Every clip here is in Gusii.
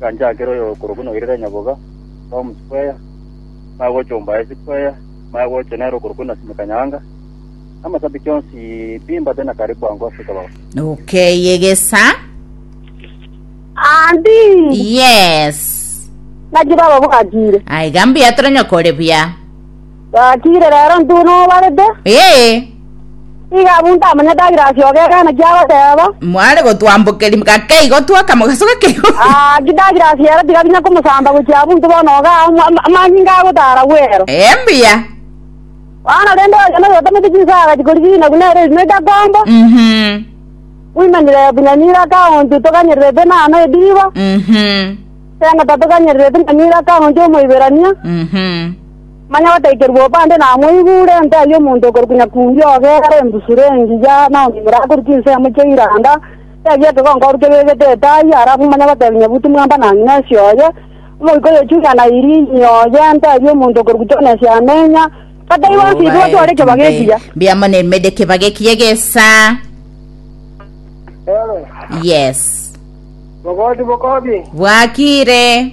Ganchakera oyokorokwa noirera nyaboga, Tom Square, maya gochomba High Square, maya gocha nere okorokwa Nasimeka Nyaanga, na amasabiti onsi pi mbate na karibu ango Africa baba. Nokeyegesa. Andi Yes. naki baba bwatire. Aiga mbuya tore nyoko ore buya. Gatiire rero intwe buna obarete, Ee, igo abwo ntamanyete agirasi oo gekana kiagoteba. mware gotwambokeria gake igo twoka mogaso gake igo. Ah, ki dagirasi ero tigabinya komosamba gochia abwo intwe bono iga amo- ama- amanyinga agotara bwero. Ee, mbuya. Bono rende oyonde oyotomete chinsaga chikorigina buna ere erimo egakomba, Mhm, oimanyire bunyanira akaonchu toganyererete nano ediba, mhm, tengata toganyererete nyanira akaonchu omoiberania, mhm. Manya gotaikerwa obande namoigure, nte ayio omonto okorokwa Nyakundi ogera embusuro engiya naomimura akorua chinsemo chia iranda, tebia ekegongoru kebegete etai, arabu manya gotebia Nyabuti mwamba na ng'ina ase oye, omoika oyechunia na Irini oye, nte ayio omonto okorokwa Jonesi amenya, gataigwa ase ise gotwara ekebago ekiya. Mbiamo ne mede kebage kiye gesa. Yes. Bogoti bokobi. Bwakire.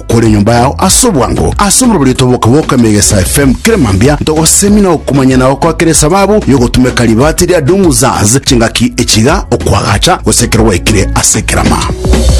kore enyomba yao ase obwango ase omorobori otoboka bwoka Megesa FM kera mambia ntogosemia na okomanya na gokoa kera esababu yogotumeka ribaati ria Dumuzaz chingaki echiga okwagacha gose ekero gwaikire ase ekerama.